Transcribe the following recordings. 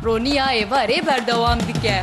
Roniya êvarê berdewam dike.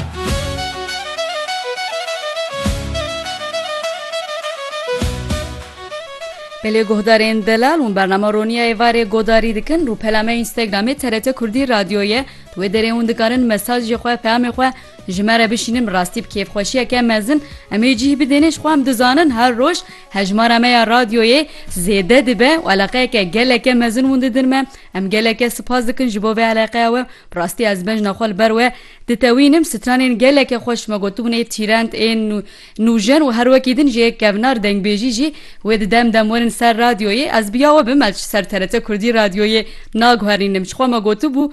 Belê guhdarên delal û bernama roniya êvarê godarî dikin rûpela me Instagramê TRT Kurdî Radyo ye di wê derê hûn dikarin mesajê xwe peyamê xwe ji me re bişînin bi rastî bi kêfxweşiyeke mezin em ê cîh bidêne ji xwe em dizanin her roj Hejmara me ya radyoyê zêde dibe û eleqeyeke geleke mezin hûn didin me. Em geleke sipas dikin ji bo vê eleqeya we. Bi rastî ez bejna xwe li ber we ditewînim. Stranên geleke xweş me gotibûn ê tîrend, ê nûjen û her wekî din jê kevnar dengbêjî jî wê di dem dem werin ser radyoyê. Ez bi ya we bim ez ji ser TRT Kurdî radyoyê naguherînim. Ji xwe me gotibû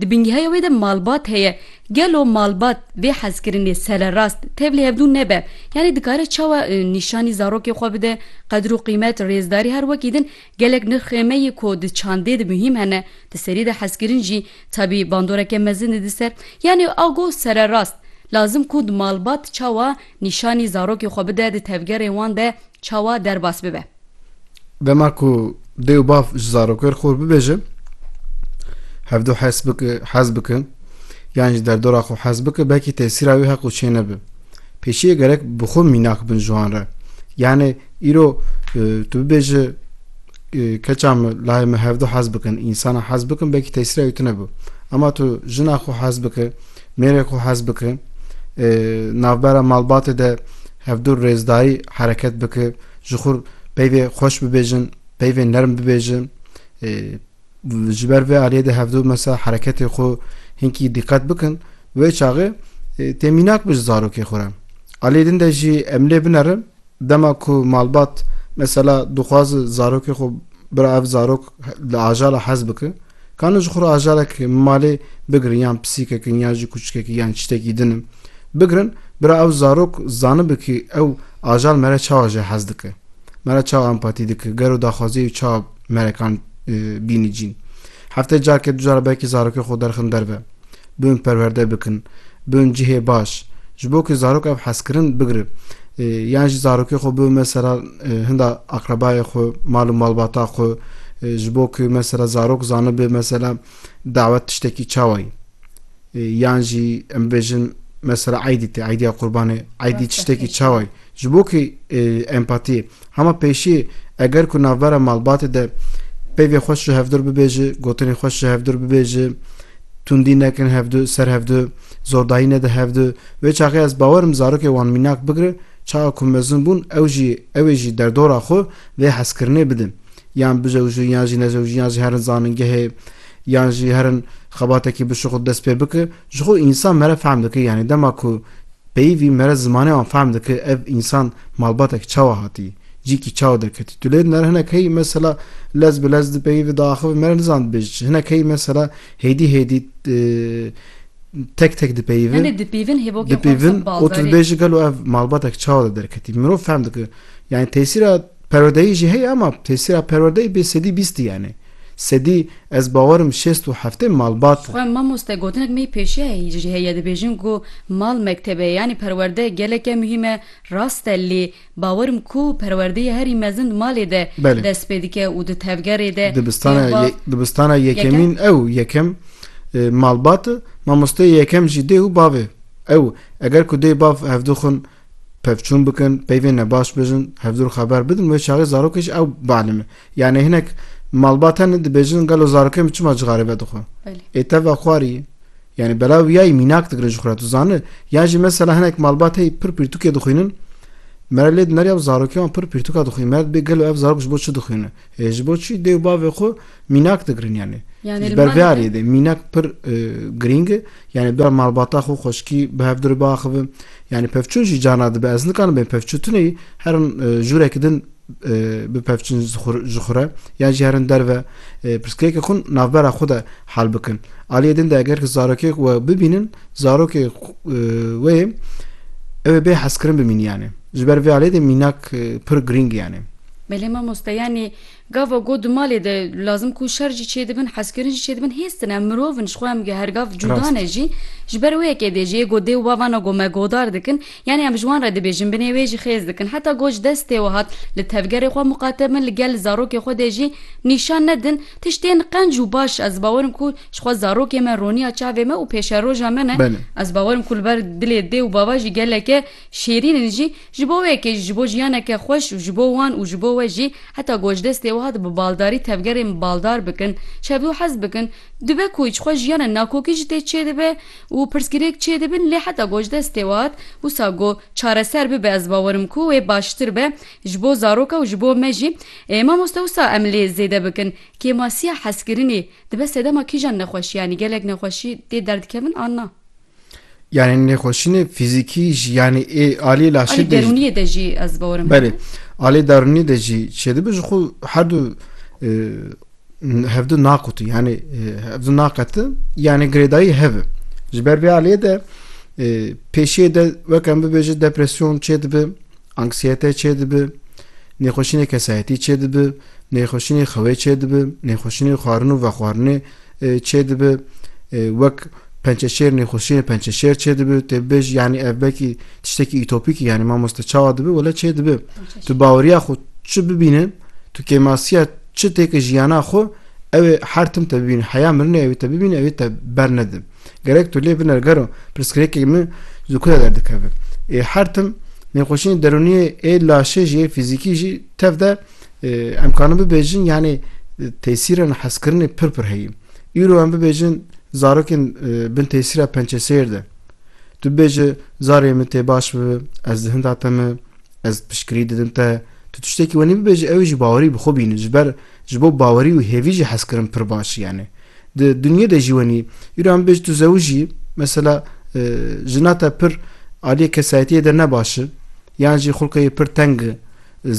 Di bingehaya wê de malbat heye. Gelo malbat vê hezkirinê sererast tevlî hevdû nebe? Yanî dikare çawa nîşanî zarokê xwe bide? Qedir û qîmet, rêzdarî her wekî din gelek nirx ê me yê ku di çandê de muhîm hene, di serî de hezkirin jî tabî bandoreke mezin e di ser. Yanî ago sererast lazim ku di malbat çawa Nîşanî zarokê xwe bide di tevgerê wan de çawa derbas bibe. Dema ku dê û bav ji zarokêr xwe bibêjin hevdu hes bike, hez bikin yan ji derdora xwe hez bike belkî tesîra wî heq û çê nebe. Pêşiyê gerek bi xwe mînak bin ji wan re. Yanê îro e, tu bibêji e, keça min lahê min hevdu hez bikin, însana hez bikin belkî tesîra wî tune be. Ema tu jina xwe hez bike, Mêrê xwe hez bike, navbera malbatê de hevdû rêzdarî hereket bike, ji xwe peyvê xweş bibêjin, peyvê nerm bibêjin. Ji ber vê aliyê de hevdû mesela hereketê xwe hinkî diqet bikin, wê çaxê tê mînak bi ji zarokê xwe re. Aliyê din de jî em lê binerin Dema ku malbat mesela dixwaze zarokê xwe bira ev zarok li ajara hez bike, kane ji xwe re ajarek malê bigirin yan pisîkekin yan jî kûçikekî yan çitekî din in bigirin bira ew zarok zanibe kî ew ajar mere çawa ji hez dike, mere çawa empatî dike, gero daxwaziyê û çawa merekan bînî cîn. Hefteyê careke du car belkî zarokê xwe derxin derve. Biûn perwerde bikin, biûn cihê baş. Ji bo ku zarok ev hezkirin bigire. Yan jî zarokê xwe biûn mesela hinda aqrebayê xwe, mal û malbata xwe ji bo ku mesela zarok zanibe mesela dawet tiştekî çawa ye. Yan jî em bêjin mesela eydî tê, eydiya qurbanê, eydî tiştekî çawa ye. Ji bo ku empatî hema pêşî eger ku navbera malbatê de peyvê xweş ji hevdur bibêji, gotinên xweş ji hevdur bibêji, tundî nekin hevdu ser hevdu, zordayî nede hevdu, wê çaxê ez bawerim zarokê wan mînak bigire, çaxa ku mezin bûn ew jî ewê jî derdora xwe vê hezkirinê bide. Yan bijewjin yan jî nejewjin yan jî herin zanîngehê yan jî herin xebatekî bişuxit dest pê bike. Jixwe însan mere fehm dike yanî dema ku peyivî mere zimanê wan fehm dike ev însan malbatek çawa hatî cîkî çawa derketî tu lêd nere hinek heyî mesela lez bi lez di peyivî de axivin mere nizan dibêj çi hinek heyî mesela hêdî hêdî tek tek dipeyivin Em dipeyivin hêvokê dipeyivin û tu dibêjî gelo ev malbatek çawa de derketî mirov fehm dike yanî tesîra Perwerdeyî jî heye ama têsîra perwerdeyî bê sedî bîst diyane. Sedî ez bawer im şêst û heftê malbat e. Xwe mamoste gotinek mey pêşeyayî jî heye dibêjin ku mal mektebe yanî perwerde geleke muhîm e rast e lê bawer im ku perwerdeyî herî mezin di malê de Belê. dest pê dike û di tevgerê de Dibistana tê xwe yê dibistana yekemîn ew yekem malbat e. Mamosteyê yekem jî dê û bavê ew. Eger ku dê bav hevdu xwin pevçûn bikin, peyvên me baş bijin, hevdûr xeber bidin, wê çaxê zarokê jî ew bianime. Yanê hinek malbat hene dibêjin gelo zarokê min çima cixarê vedixwe. Ê teva xwarî ye. Yanê belav wiyayî mînak digire ji xwe re tu zani. Yan jî mesela hinek malbat heyî pir pirtûkê dixwînin, mere lê dineriya zarokê wan pir pirtûka dixwînin, mere dibê gelo ev zarok ji bo çi dixwîne. E, ji bo çi dê û bavê xwe mînak digirin yanî. Yanî Ji li ber vê malê de- aliyê de mînak pir e, girîng e. Yanî bi dua malbata xwe, xweşikî bi hev dir biaxivin. Yanî pevçûn jî carna dibe. Ez nikarim bê pevçû tune yî herin e, jûrekî din e, bipevçin ji xwe- ji xwe re yan jî herin derve e, pirsgirêkê xwe navbera xwe de hal bikin. Aliyê din de eger ki zarokek we bibînin, zarokê xwe- e, wê ew ê bê hezkirin bimînî yanî. Ji ber vê aliyê de mînak e, pir girîng e yanî. Belê mamoste yanî gava ku di malê de lazim ku şer jî çêdibin, hezkirin jî çêdibin hêz tine, mirov in ji xwe em her gav cuda ne jî. Ji ber wê yekê dê jiyê ku dê û bavana ku me godar dikin yanî em ji wan re dibêjin binê wê jî xêz dikin. Heta ku ji destê we hat li tevgerê xwe muqate bin li gel zarokê xwe de jî nîşan nedin tiştên qenc û baş ez bawer im ku ji xwe zarokê me roniya çavê me û pêşeroja me ne ez bawer im ku li ber dilê dê û bava jî geleke şêrîn in jî Ji bo wê kê jî, ji bo jiyaneke xweş û ji bo wan û ji bo we jî, heta ku ji destê wiha de bi baldarî tevgerên baldar bikin, çev û hez bikin, dibe ku ji xwe jiyana nakokî jî tê çêdibe û pirsgirêk çêdibin, lê heta ku ji destê wiha de wisa ku çareser bibe ez bawer im ku wê baştir be ji bo zaroka û ji bo me jî. Mamoste wisa em lê zêde bikin, kêmasiya hezkirinê dibe sedema kîjan nexweşiyanî, gelek nexweşî tê derdikevin an na? Yani nêxweşînê fîzîkî jî yanî ê alî laşê de derûniyê de jî ez borim. Belê. Alê darûnî de jî çêdibi ji xwe her du hevdu naqutu yani hevdu naqeti yani girêdayî hev e. Ji ber vê aliyê de pêşiyê de weke em bibêje depresyon çêdibi Anksiyete çêdibi, nêxweşînê kesayetî çêdibi, nêxweşînê xewê çêdibi, nêxweşînê xwarin û vexwarinê çêdibi, wek pençeşêr nêxweşînê pençeşêr çêdibi, tê bibêjî yanî ev belkî tiştekî utopîk î yanî mamoste çawa dibi wele çêdibi. Tu baweriya xwe çi bibîne, tu kêmasiya çi têke jiyana xwe ew ê her tim te bibîne, heya mirinê ew ê te bibîne ew ê te bernede. Gerek tu lê biner gero pirsgirêkê min ji ku re derdikeve. Ê her tim nêxweşiyên derûniyê ê laşê jî ê fîzîkî jî tev de em karin bibêjin yanî tesîrên hezkirinê pir pir heye. Îro em bibêjin zarokên bin tesîra pençesêr de. Tu bibêje zarê min tê baş bibe, ez di hinda te me, ez piştgirî didim te, tu tiştekî wenî bibêje ewê jî bawerî bi xwe bîne ji ber Ji bo bawerî û hêvî jî hezkirin pir baş yani. Di dinyê de jî wenî îro em bêj tu zewijî mesela jina te pir aliyê kesayetiyê de ne baş i yan jî xulqê wî pir teng i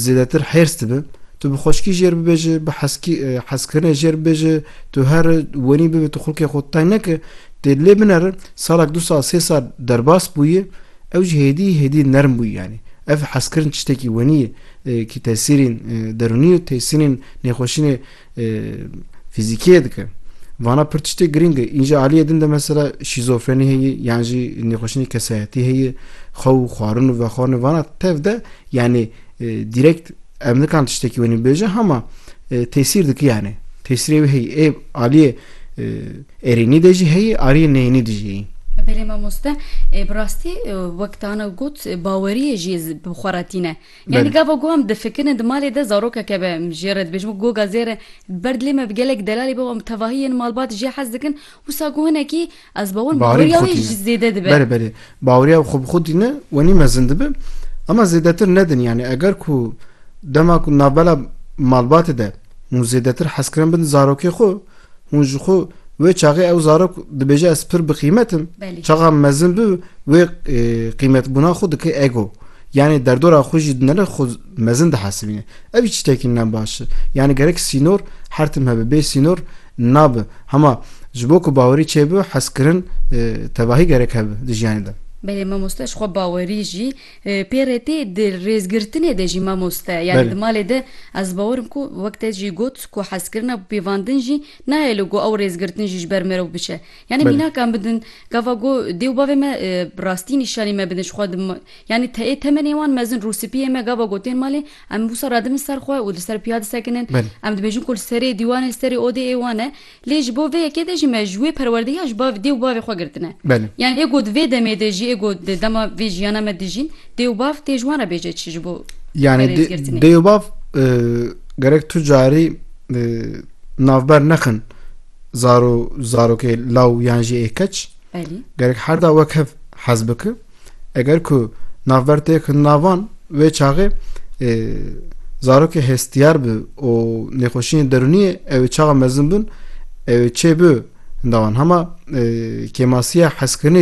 zêdetir hêrs dibi tu bi xweşkî jêr bibêji bi heskî hezkirinê jêr bibêji tu her wenî bibê tu xulqê xwe teng neke tê lê bineri salek du sal sê sal derbas bûyî Ew jî hêdî hêdî nerm bû yanî. Ev hezkirin tiştekî wenî ye kî tesîrên derûnî û tesînên nêxweşînê fîzîkî yê dike. Vana pir tiştê girîng e. Înca aliyê din de mesela şîzofrenî heye yan jî nêxweşînê kesayetî heye, xew û xwarin û vexwarinê vana tev de yanî direkt em nikan tiştekî wenî bibêjin hema tesîr dike yanî tesîrê wê heye. Ê aliyê Erênî de jî heye, ariyê neyênî de jî heye. Belê mamoste bi rastî wek tana got baweriyê jî bi xwe re tîne. Yanî gava ku em difikirine di malê de zarokeke be em jê re dibêjin wek goga zêr e. Li ber dilê me bi gelek delalê be wan bi tevahî yên malbat jê hez dikin wisa ku hinekî Ez bawir baweriya wê ji zêde dibe. Berê berê. Baweriya xwe bi xwe dîne wenî mezin dibe. Ema zêdetir nedin yani eger ku dema ku navbela malbatê de hûn zêdetir hezkirin bin zarokê xwe hûn ji xwe wê çaxê ew zarok dibêje ez pir bi qîmetim çaxa mezin bi wê qîmetbûna xwe dike ego. Yanî derdora xwe jî dinere xwe mezin dihesibîne. Ev jî tiştekî ne baş e. Yanî gerek sînor her tim hebe. Bê sînor nabe. Hema ji bo ku bawerî çêbibe hezkirin tevahî gerek hebe di jiyanê de. Belê mamoste ji xwe bawerî jî pê re tê. Di rêzgirtinê de jî mamoste yanî di malê de ez bawer im ku wek te jî got ku hezkirina bi pêvandin jî nayê li ku ew rêzgirtin jî ji ber mirov biçe. Yanî mînakan bidin, gava ku dê û bavê me bi rastî nîşanî me bidin ji xwe di yanî te ê temenê wan mezin rûspiyê me gava ku tên malê em wisa radibin ser xwe û li ser piya disekinin em dibêjin ku li serê dîwanê li serê odê ê wan e lê ji bo vê yekê de jî me ji wê perwerdehiya ji bavê dê û bavê xwe girtine yanî ê ku di vê demê de jî ê ku di dema vê jiyana me dijîn dê û bav tê ji wan re bêje çi ji bo yanî dê û bav gerek tu carî navber nexin zaro zarokê law yan jî ê keç Belî. gerek her da wek hev hez bike eger ku navber tê ki navan wê çaxê e, zarokê hestiyar bi û nêxweşiyên derûniyê ew ê çaxa mezin bin ew ê çê bi hindawan hema e, kêmasiya hezkirinê